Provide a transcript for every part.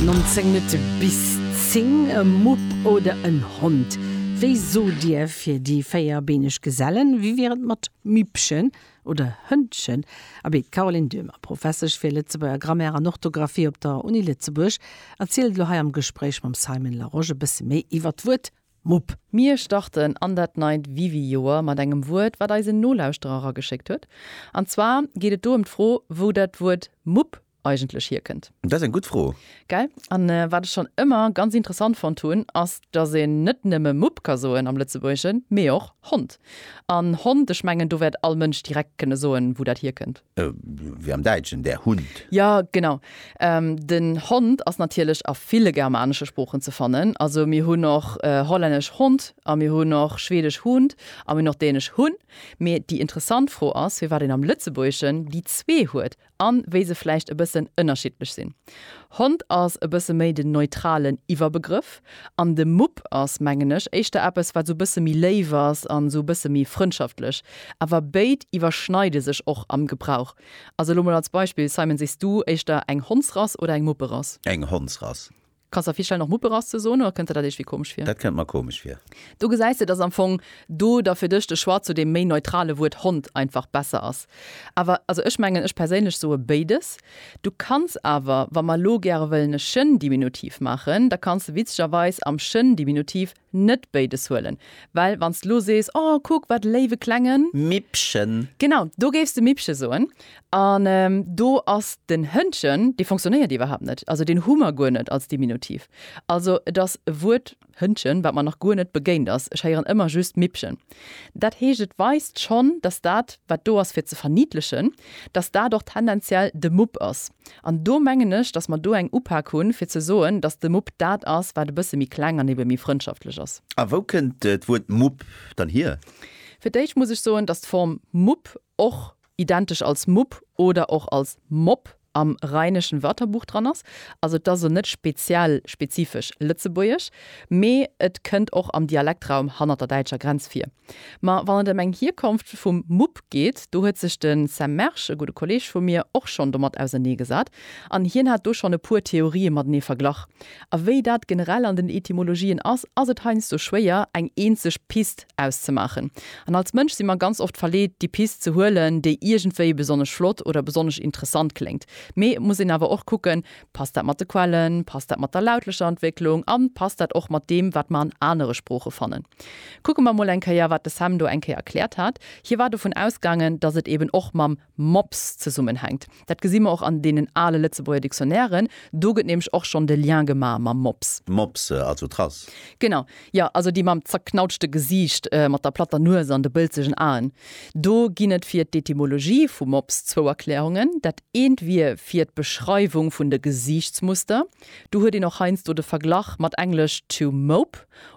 19 Minutte bis 10, E Mupp oder en Hond? Wéi sot Dir fir déi véierbeeneg Gesellen? Wéi wier et mat Mippchen oder Hëndchen? Abee, d'Caroline Döhmer, Professesch fir Lëtzebuerger Grammaire an Orthografie op der Uni Lëtzebuerg, erzielt elo hei am Gespréich mam Simon Larosche bësse méi iwwer d'Wuert Mupp. Mir starten an dat neit Wiwi-Joer mat engem Wuert, wat eis en Nolauschterer erageschéckt huet. An zwar geet et do ëm d'Fro, wou dat Wuert Mupp eigentlech hierkënnt. Dat ass eng gutt Fro. Gell? A wat ech schonn ëmmer ganz interessant fonnt hunn, ass, dass een net nëmme Mupp ka soen am Lëtzebuergeschen, mee och Hond. An Hond, ech mengen, do wäert all Mënsch direkt kënne soen, wou dat hierkënnt. Wéi am Däitschen, der Hund. Jo, genau. Den Hond ass natierlech a ville germanesche Sproochen ze fannen. Also mir hunn och hollännesch Hond a mir hunn och schweedesch Hund a mir hunn och dänesch Hun. Mee déi interessant Fro ass, firwat een am Lëtzebuergeschen déi zwee huet a wéi se vläicht e bëssen ënnerschiddlech sinn. Hond ass e bësse méi den neutralen Iwwerbegrëff, An de Mupp ass, mengen ech, éischter eppes, wat esou e bësse méi léif ass an esou e bësse méi frëndschaftlech. Awer béid iwwerschneide sech och am Gebrauch. Also elo mol als Beispill, Simon, Sichs du éischter eng Hondsrass oder eng Mupperass? Eng Hondsrass. Kanns der virstellen och Mupperass ze soen, oder kënnt der dat iergwéi komesch vir? Dat kënnt mer komesch vir. Do gesäis de, dass am Fong do da fir dech de Choix zu deem méi neutrale Wuert Hond einfach besser ass. Awer, also ech mengen, ech perséinlech soe béides. Du kanns awer, wa mer elo gäre wëllen e Schëndiminutiv maachen, da kanns de witzegerweis am Schëndiminutiv net béides huelen, well wann s de elo sees, Oh, kuck, wat e léiwe klengen. Mippchen! Genau, do géifs de Mippche soen. An do ass den Hëndchen, dee fonctionnéiert iwwerhaapt net, also deen hu mer guer net als Diminutiv. Also et ass e Wuert, Hëndchen, wat mer nach guer net begéint ass, ech héieren ëmmer just Mippchen. Dat heescht, et weist schonn, dass dat, wat do ass fir ze verniedlechen, dass dat och tendenziell de Mupp ass. An do mengen ech, dass mer do eng Upak hunn, fir ze soen, dass de Mupp dat ass, wat e bësse méi kleng an ebe méi frëndschaftlech ass. A wou kënnt d'Wuert Mupp dann hier? Fir d'éischt muss ech soen, dass d'Form Mupp och identesch als Mupp oder och als Mopp am Rheinischen Wörterbuch dran ass. Also et ass o net speziell, spezifesch lëtzebuergesch, mee et kënnt och am Dialektraum hannert der däitscher Grenz vir. Ma wann et ëm eng Hierkonft vum Mupp geet, do huet sech de Sam Mersch, e gudde Kolleeg vu mir, och schonn domat auserneegesat an hien hat do schonn e puer Theorië matenee verglach. A wéi dat generell an den Etymologien ass, ass et heiansdo schwéier, eng eenzeg Pist auszemaachen. An als Mënsch si mer ganz oft verleet, déi Pist ze huelen, déi iergendwéi besonnesch flott oder besonnesch interessant kléngt. Mee et muss een awer och kucken, Passt dat mat de Quellen? Passt dat mat der lautlecher Entwécklung? A passt dat och mat deem, wat mer an anere Sprooche fannen? Kucke mer emol eng Kéier, wat de Sam do eng Kéier erkläert hat. Hie war dovun ausgaangen, datt et eeben och mam Mops zesummenhänkt. Dat gesi mer och an deenen ale Lëtzebuerger Dictionnairen, do gëtt nämlech och schonn de Lien gema mam Mops. Mops, also Trass. Genau, jo, also déi mam zerknautschte Gesiicht, mat der platter Nues an de bëlzegen Aen. Do ginn et fir d'Etymologie vu Mops zwou Erklärungen. Dat eent wier fir d'Beschreiwung vun de Gesiichtsmuster. Do huet een och heiansdo de Verglach mat englesch to mope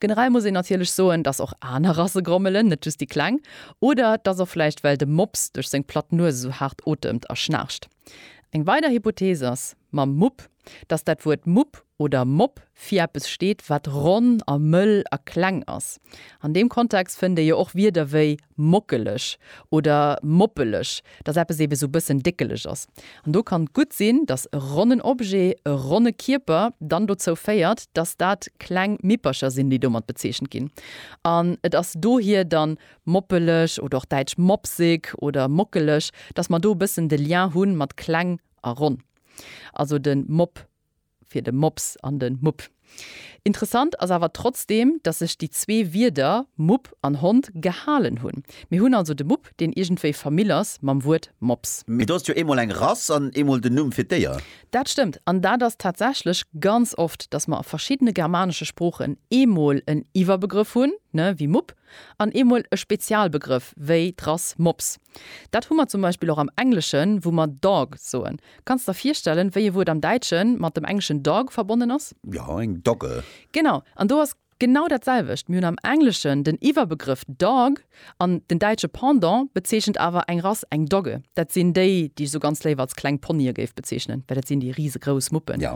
Generell muss een natierlech soen, dass och aner Rasse grommelen, net just déi kleng. Oder et ass och vläicht, well de Mops duerch seng platt Nues esou haart otemt a schnaarcht. Eng weider Hypothees ass mam Mupp, dass dat Wuert Mupp oder Mopp fir eppes steet, wat ronn a mëll a kleng ass. An deem Kontext fënnt ee jo och Wierder wéi Mockeleg oder moppeleg, dass eppes eebe sou bëssen déckeleg ass. An do kann gutt sinn, dass e ronnen Objet, e ronne Kierper dann dozou féiert, dass dat kleng Mippercher sinn, déi domat bezeechent ginn. An et ass dohier dann moppeleg oder och däitsch mopsig oder mockeleg, dass mer do e bëssen de Lien hu mat kleng a ronn. Also de Mopp Fir de Mops an de Mupp. Interessant ass awer trotzdeem, datt sech déi zwee Wierder, Mupp an Hond, gehalen hunn. Mir hunn also de Mupp, deen iergendwéi Famill ass mam Wuert Mops. Mee do ass jo eemol eng Rass an eemol den Numm fir d'Déier. Dat stëmmt. An dat ass tatsächlech ganz oft, datt mer a verschiddene germanesche Sproochen eemol en Iwwerbegrëff hunn, ne, wéi Mupp, an eemol e Spezialbegrëff, wéi d'Rass Mops. Dat hu mer zum Beispill och am Engleschen, wou mer dog soen. Kanns de der virstellen, wéi e Wuert am Däitschen mat dem engleschen dog verbonnen ass? Jo, eng Dogge. Genau. An do ass genau dat selwecht. Mir hunn am Engleschen den Iwwerbegrëff dog, an den däitsche Pendant bezeechent awer eng Rass, eng Dogge. Dat sinn déi, déi ech esou ganz léif als kleng Ponye géif bezeechnen, well dat sinn déi risegrouss Muppen. Jo.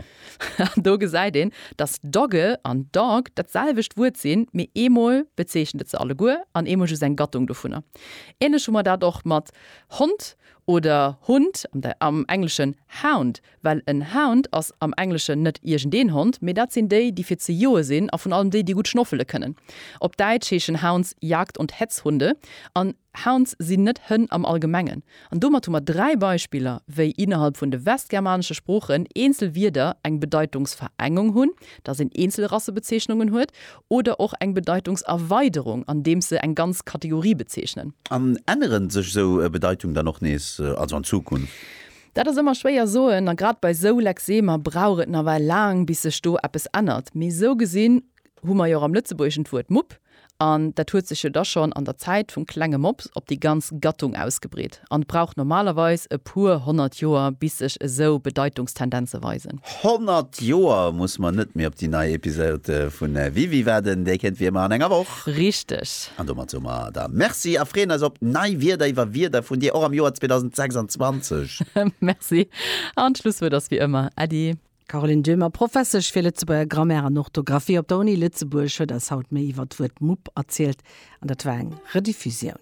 An do gesäit een, dass Dogge an dog dat selwecht Wuert sinn, mee eemol bezeechent et se alleguer an eemol just eng Gattung dovunner. Ähnlech hu mer dat och mat Hond oder Hund, am Engleschen hound, well en Hound ass am Engleschen net iergendeen Hond, mee dat sinn déi, déi fir ze joe sinn a vun allem déi, déi gutt schnoffele kënnen. Op Däitsch heeschen Hounds Jagd und Hetzhunde an Hounds sinn net Hënn am Allgemengen, An domat hu mer dräi Beispiller, wéi innerhalb vun de westgermanesche Sproochen eenzel Wierder eng Bedeitungsverengung hunn, dass een eenzel Rassebezeechnungen huet, oder och eng Bedeitungserweiderung, andeems se eng ganz Kategorie bezeechnen. An änneren sech esou Bedeitung dann och nees, also an Zukunft? Dat ass ëmmer schwéier soen, a grad bei esou Lexemer brauch et nawell laang, bis sech do eppes ännert. Mee esou gesinn hu mer jo och am Lëtzebuergeschen d'Wuert Mupp, an dat huet sech jo da schonn an der Zäit vum klenge Mops op déi ganz Gattung ausgebreet an et brauch normalerweis e puer honnert Joer, bis sech esou Bedeitungstendenze weisen. Honnert Joer muss mer net méi op déi nei Episod vu WiWi waarden, déi kënnt wéi ëmmer an enger Woch. Richteg. An domat soe mer der Merci a freeën eis op nei Wierder iwwer Wierder vun dir och am Joer 2026. Merci an d'Schlusswuert ass wéi ëmmer Äddi. Caroline Döhmer, Professesch fir Lëtzebuerger Grammaire an Orthografie op der Uni Lëtzebuerg, huet eis haut méi iwwer d'Wuert Mupp erzielt an dat war eng Rediffusioun.